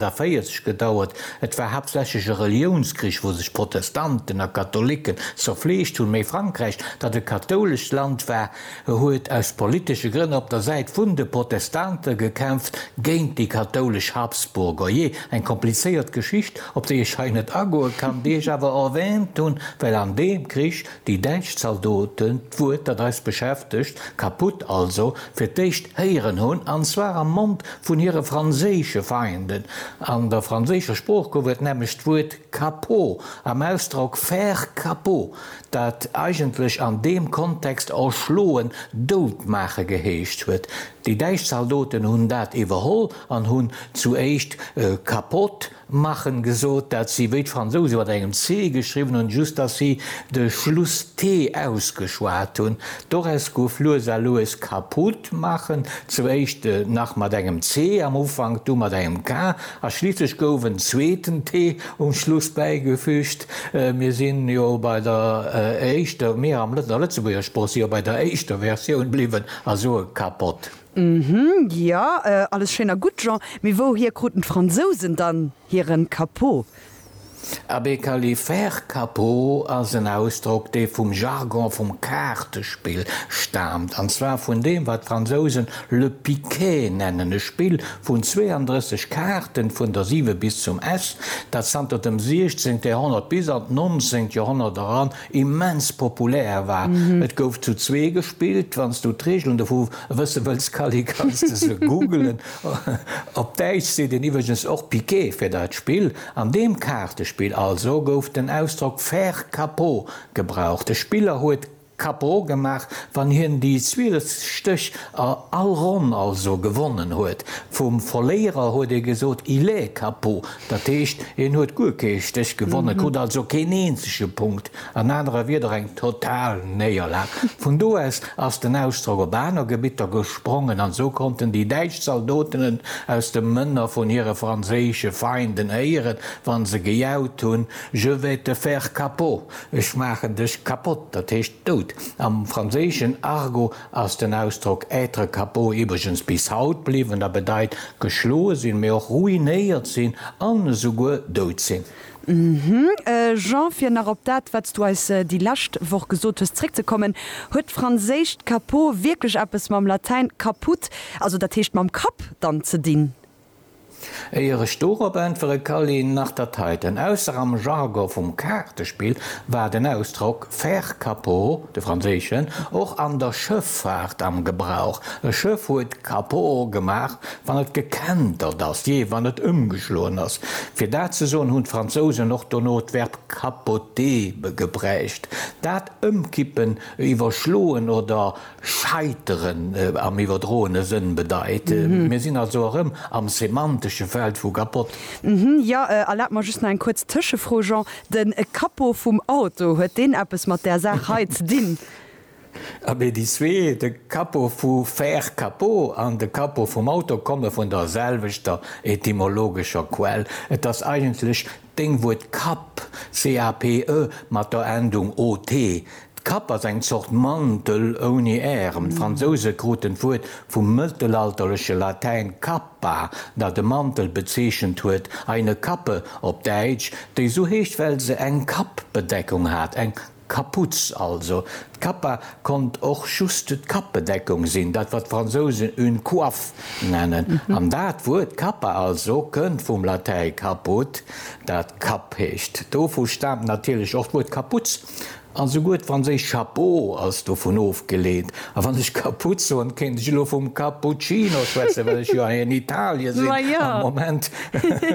Da 40 gedauert. Et war haaptsächlech e Reliounskrich, wou sech Protestanten a Katholiken zerfleegt hunn, mee Frankräich, dat e kathoulescht Land war, huet aus politesche Grënn op der Säit vun de Protestante gekämpft géint déi kathoulesch Habsburger. Jee, eng komplizéiert Geschicht, op déi ech hei net agoe kann, déi ech awer erwähnt hunn, well an deem Krich Déi däitsch Zaldoten, d'Wuert dat eis beschäftegt, kaputt also, fir d'éischt héieren hunn, an zwar am Mond vun hire franséische Feinden. An der franséischer Sprooch gouf et nämlech d'Wuert Capot am Ausdrock faire capot, dat eigentlech an deem Kontext erschloen, dout maache geheescht huet. Déi däitsch Zaldoten hunn dat iwwerholl an hunn zu éischt Capote Machen gesot, dat si wéi d'Fransouse mat engem C geschriwwen hunn, just datt si de Schluss T ausgeschwat hunn. D'Doress gouf lues a lues kaputt, Machen zum éischte nach mat engem C am Ufank, du mat engem K a schliisslech gouf en zweeten T um Schluss bäigefüügt. Mir si jo bei der éischter, mir an der Lëtzebuerger Sprooch si jo bei der éischter Versioun bliwwen a soe kapott. Mhmm, jo, alles schéin a gutt, Jean, mee wouhier kruten d'Fransousen dann hiren Capot? Abee, Kally, faire capot ass en Ausdrock, dee vum Jargon vum Kaartespill staamt, an zwar vun deem, wat d'Fransousen le piquet nennen, e Spill vun 32 Kaarten, vun der 7 bis zum S, dat zanter dem 16. Joerhonnert bis an d'nonzéngt Joerhonnert eran immens populär war. Et gouf zu zwee gespillt. Wann s du d'Reegelen dovu wësse wëlls, Kally, kanns de se googelen. Op Däitsch seet een iwwregens och Piquet fir dat Spill. An deem Kaartespill also gouf den Ausdrock faire capot gebraucht. De Spiller huet capot gemaach, wann hien déi 12 Stéch a all Ronn also gewonnen huet. Vum Verléierer huet ee gesot, il est capot. Dat heescht, en huet guer kee Stéch gewonnen, krut also keen eenzege Punkt, an anerer Wieder eng total Néierlag. Vun do aus ass den Ausdrock op aner Gebitter gesprongen, an esou konnten déi däitsch Zaldotenen aus de Mënner vun hire franséische Feinden héieren, wa se gejaut hunn, Je vais te faire capot, ech maachen dech kapott, dat heescht dout am franséischen Argot. ass den Ausdrock être capot iwwregens bis haut bliwwen a bedeit geschloe sinn, mee och ruinéiert sinn an esouguer dout sinn. Jean, fir nach op dat, wat s du eis déi lescht Woch gesot hues, zréckzekommen, Huet d'franséischt capot wierklech eppes mam Latäin caput, also dat heescht mam Kapp, dann ze dinn? Éier ech dorop äntwere Kally, nach dat heiten, ausser am Jargon vum Kaartespill war den Ausdrock faire capot, de franséischen, och an der Schëffaart am Gebrauch, e Schëff huet capot gemaach, wann et gekentert ass, jee, wann et ëmgeschloen ass. Fir dat ze soen, hunn d'Fransousen och dono d'Verb capoter gebräucht, dat ëmkippen, iwwerschloen oder Scheiteren am iwwerdroene Sënn bedeit. Mir sinn also erëm am semantesche Feld vu kapott. Jo, erlaabt mer just nach eng kuerz Tëschefro, Jean. De Capot vum Auto, huet deen eppes mat där Saach hei ze dinn? Abee, déi zwee, de Capot vu faire capot an de Capot vum Auto, komme vun der selwechter etymologescher Quell. Et ass eigentlech Deng Wuert Kapp, C-A-P-E, mat der Endung ot. D'Kapp ass eng Zort Mantel ouni Ärem. D'Fransouse kruten d'Wuert vum mëttelalterleche Latäin cappa, dat e Mantel bezeechent huet, eine Kappe op Däitsch, déi sou heescht, well se eng Kappbedeckung hat, eng D'Kapuz also, d'Capa, konnt och just d'Kappbedeckung sinn, dat wat d'Fransousen une coiffe nennen. An dat Wuert Capa also kënnt vum Latäi caput, dat Kapp heescht. Dovu staamt natierlech och d'Wuert Kapuz, an souguer d'franséischt chapeau ass dovun ofgeleet. A wann ech Kapuz soen, kéint ech elo vum Cappuccino schwätzen, well ech jo hei an Italie sinn am Moment,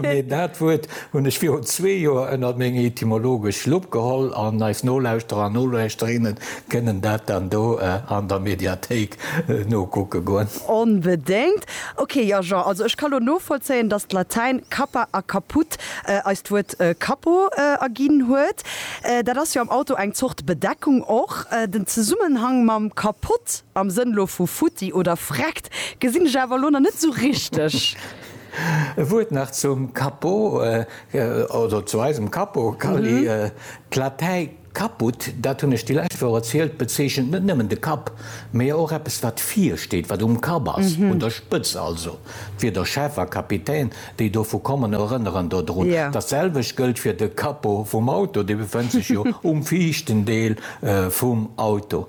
mee dat Wuert Hunn ech virun zwee Joer ënnert meng etymologesch Lupp geholl an eis Nolauschterer an Nolauschterinnen kënnen dat dann do an der Mediathéik nokucke goen. Onbedéngt. Ok, jo Jean, also ech ka lo novollzéien, dass d'Latäin cappa a caput eis d'Wuert Cappo erginn huet. Dat ass jo am Auto eng Zort Bedeckung och. Den Zesummenhang mam kapott, am Sënn lo vu futti oder vreckt, gesinn ech awer lo nach net sou richteg. E Wuert nach zum Capo oder zu eisem Capo, Kally. D'Latei caput, dat hunn ech déi lescht Woch erzielt, bezeechent net nëmmen de Kapp, mä och eppes, wat vir steet, wat um Kapp ass, un der Spëtz also. D'Wierder Chef a Kapitän, déi dovu kommen, erënneren dodrun. Datselwecht gëllt fir de Capo vum Auto, dee befënnt sech jo um viischten Deel vum Auto.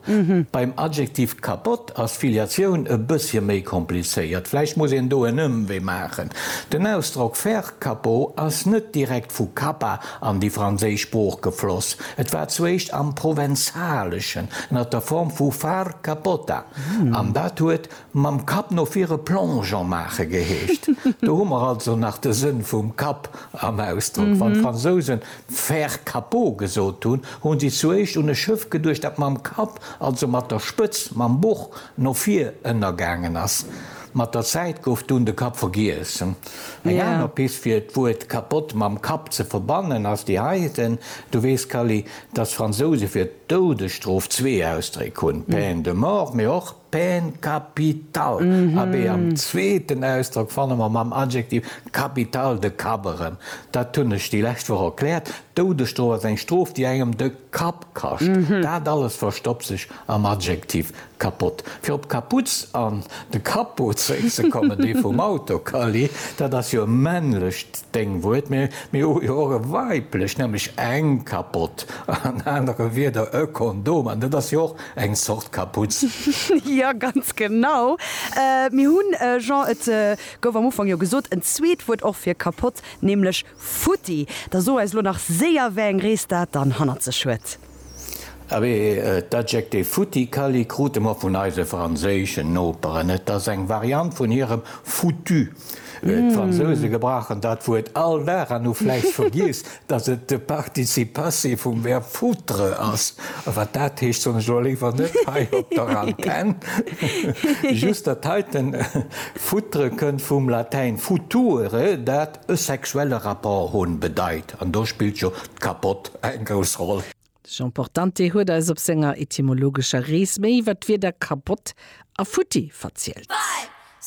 Beim Adjektiv kapott ass d'Filiatioun e bëssche méi komplizéiert. Vläicht muss een do en Ëmwee maachen. Den Ausdrock faire capo ass net direkt vu Kappa an déi franséisch Sprooch gefloss. Et war zuéischt am Provenzaleschen ënner der Form vu far cappota an dat huet mam Kapp no vir e Plongeon maache geheescht. Do hu mer also nach de Sënn vum Kapp am Ausdrock. Wann d'Fransousen Faire Capot gesot hunn, hu si zuéischt un e Schëff geduecht, dat mam Kapp, also mat der Spëtz, mam Boch no vir ënnergaangen ass. Mat der Zäit gouf dunn de Kapp vergiess. Eng aner Pist fir d'Wuert Capote mam Kapp ze verbannen ass déi heiten. Du weess, Kally, dass d'Fransouse fir d'Doudesstrof zwee Ausdréck hunn, peine de mort, mee och. Peine capitale, abee am zweeten Ausdrock fanne mer mam Adjektiv capitale de Kapp erëm. Dat hunn ech déi lescht Woch erkläert, Doudesstrof ass eng Strof, déi engem de Kapp kascht. Dat alles verstoppt sech am Adjektiv kapott. Fir op Kaputz an de Capot zeréckzekommen, dee vum Auto, Kally, dat ass jo e männlecht Déngwuert, mä mir hu jo och e weiblecht, nämlech eng Kapott, an anere Wierder e Kondom, an dat ass jo och Eng Zort Kaputz. Jo, ganz genau. Mir hunn, Jean, et gouf am Ufank jo gesot, en zweet Wuert och fir kapott, nämlech futti. Da so eis elo nach séier, wéi eng Rees dat dann hannert sech huet. Abee, d'Adjektiv futti Kally krute mer vun eise franséischen Noperen. Et ass eng Variant vun hirem foutu. D'Fransouse gebrauchen dat Wuert all Dag an hu vläicht vergiess, datt et de Participe passé vum Verb foutre ass. A wat dat heescht, soen ech elo léiwer net hei op der Antenn. Just dat heiten foutre kënnt vum Latäin future, dat e sexuelle Rapport hunn bedeit. An do spillt jo d'Kappott eng grouss Roll. De Jean Portante huet eis op senger etymologescher Rees méi iwwer d'Wierder Kappott a futti verzielt.